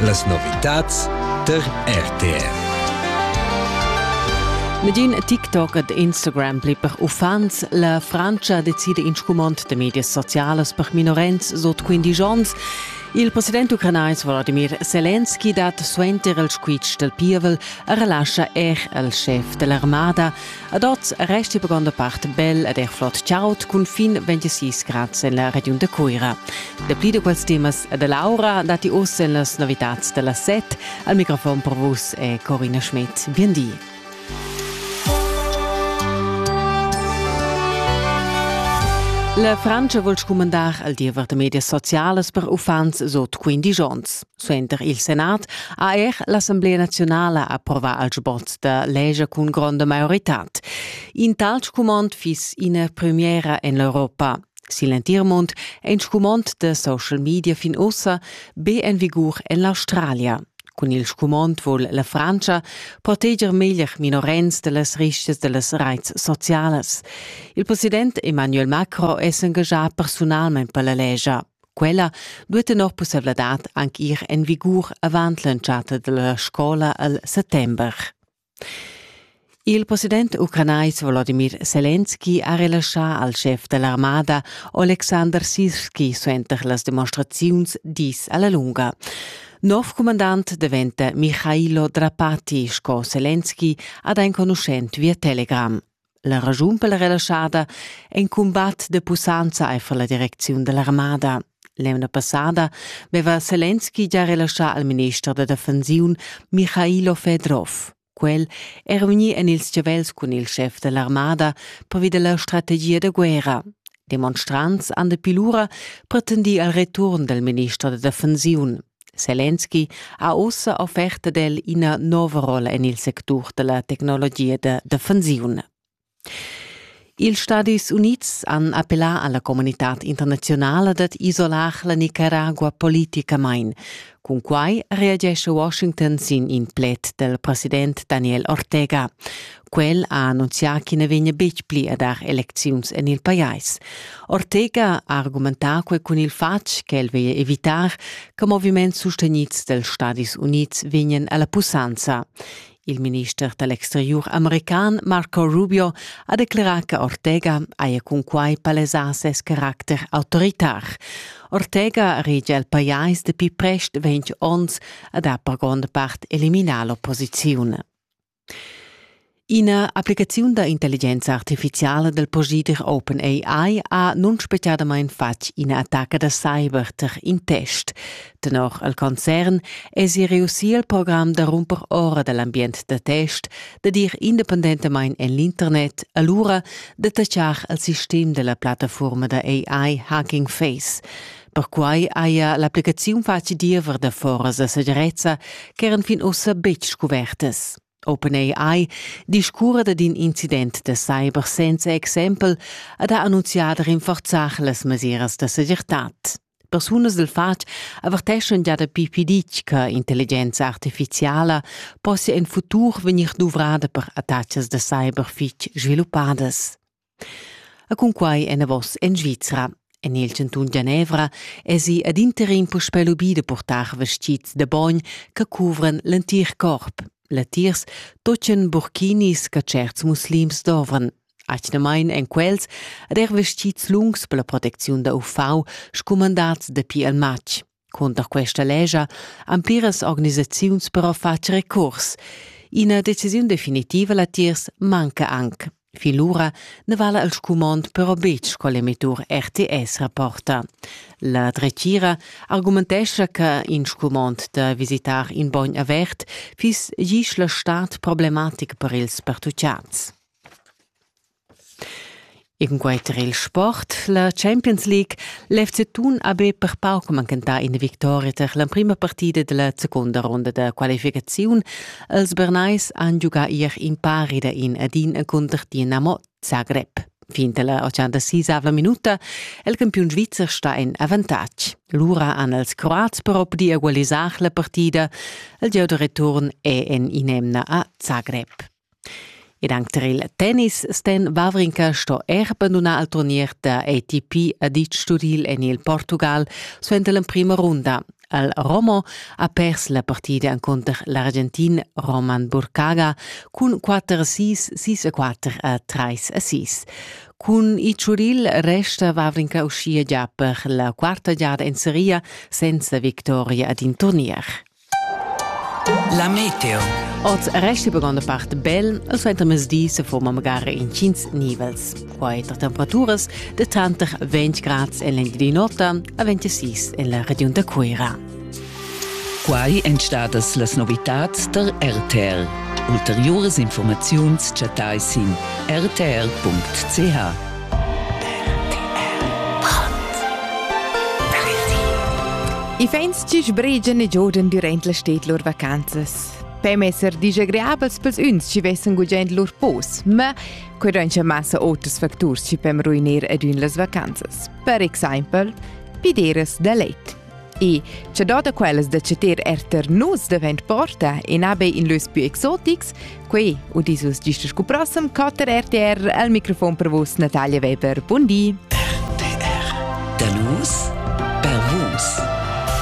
Las novitads tar RTR. Medin TikTok ed Instagram pli per uffants. La Frantscha decida in scumond de medias socialas per minorens sot 15 onns. Il president ucranais Volodymyr Zelensky dat suenter il squitsch del pievel a relascha er al chef dell'armada. Ad oz resti per gronda part bel ed er flot chaud cun fin 26 grads en la regiun da Cuira. Dapli da quels temas e da Laura datti oz en las novitads da la set. Al microfon per vus è Corina Schmidt. Bien di. La Francia vul scumandar al diever de medias socialas per uffants sot 15 onns. Suenter il Senat ha er l'Assemblea naziunala approvà al sbot da leger cun gronda maioritad. In tal scumond fiss ina premiera en l'Europa. Sin l'entir mund è in scumond da social media fin ussa be en vigur en l'Australia. Cun il scumond vul la Francia proteger meglier minorens da las risches da las reits socialas. Il president Emmanuel Macron è s'engagà personalmain per la legia. Quella duet tenor pusseivladad anc ir en vigur avant l'entschatta dalla scola al settember. Il president ucranais Volodimir Selenski ha relaschà al chef dell'armada Alexander Sirski suenter las demonstraziuns dis alla lunga. Nov comandant diventa Michailo Drapati, sco Selenski ha da enconuschent via Telegram. La raschun per la relaschada è in cumbat de pussanza aifer la direcziun dell'armada. L'emna passada veva Selenski già relaschà al minister da defensiun Michailo Fedrov. Quel era vegnì en ils chavels cun il chef dell'armada pervi della strategia de guerra. Demonstrants an de pilura pretendì al return del minister da defensiun. Selenski ha ussa offerta d'el ina nova rolla en il sectur da la tecnologia da defensiun. Ils Stadis Unids han appellà alla comunità internazionala dad isolar la Nicaragua politicamain. Cun quai reagesce Washington sin in pled del president Daniel Ortega. Quel ha annunzià ch'i na vegnia betg pli a dar elecziuns en il pajais. Ortega ha argumentà quai cun il fatg ch'el veglia evitar che moviments sustegnids dals Stadis Unids vegnan a la pussanza. Il minister da l'exteriur american Marco Rubio ha declerà che Ortega haja cunquai palesà ses caracter autoritar. Ortega regia il pajais dapi prest ventg onns ad ha per gronda part eliminà l'opposiziun. Ina applicaziun da intelligenza artificiala dal posider OpenAI ha nunspetgadamain fatg ina attacca da cyber tar in test. Tenor il concern èsi reussì il program da rumper ora da l'ambient da test da dir independentamain en l'internet, alura da tatschar il sistem da la plattafurma da AI Hacking Face. Perquai haja l'applicaziun fatg diever da foras a segirezza ch'eran fin ussa betg scuvertas. OpenAI discurra dad in incident da cyber senza exempel ed ha annunzià da rinforzar las mesiras da segirtad. Persunas dal fatg averteschan già dapi pitg che intelligenza artifiziala possia en futur vegnir duvrada per attacas da cyber fitg sviluppadas. E cunquai enavos en Svizra. En il chantun Genevra èsi ad interim puspè lubì da portar vestgids da bogn che cuvran l'entir corp. Latiers toccan burkinis che certs muslims dovran. Atgnamain èn quels ad er vestgids lungs per la protecziun da UV scumandats dapi il matg. Cunter questa lescha han pliras organisaziuns però fatg recurs. Ina decisiun definitiva latiers manca anc. Fin lura ne vala il scumond però betg col emettur RTS rapporta. La dretgira argumentescha che in scumond da visitar in bogn avert fiss gis la stad problematic per ils pertucciats. Cunquei era il sport la Champions League. L'FC Thun ha be per pauc mancantà ina victoria tar l'emprima partida della secunda ronda da qualificaziun. Els Bernais han giugà ier impari da in ad in cunter Dinamo Zagreb. Fin dalla 86 minuta il campiun svizzer sta en avantatg. Lura han els croats però pudì egualisar la partida. Il gieu da return è en in'emna a Zagreb. Ed anc tar il tennis Sten Wawrinka sto er bandunar il turnier da ATP Adic Sturil en il Portugal suenter l'emprima runda. El Romo ha pers la partida encunter l'Argentin Roman Burkaga cun 4-6, 6-4 e 3-6. Cun Icuril resta Wawrinka uschia gia per la quarta giada en seria senza victoria ad in turnier. La meteo. Oz resta per granda part bel e suenter mesdi se forma magari intgins nivels. Quai tar temperaturas de tanter 20 grads en l'Engiadin'Ota a 26 en la regiun da Cuira. Quai èn stadas las novitads der RTL. Ulteriores Informaziuns chattai sin rtl.ch. I vegns chi sbregian e giodan durant la sted lur vacanzas. Per messer disagrabels pels uns chi vessan gugent lur pos, ma quai doncha massa oters facturs chi pem ruiner ad ün las vacanzas. Per exaimpel, pideras da let. E che dada quellas da ceter erter nus davent porta e nabe in lös più exotics, quei udis vus gist scu prossem catter RTR al microfon per vus Natalia Weber. Bundi! RTR. Da nus per vus.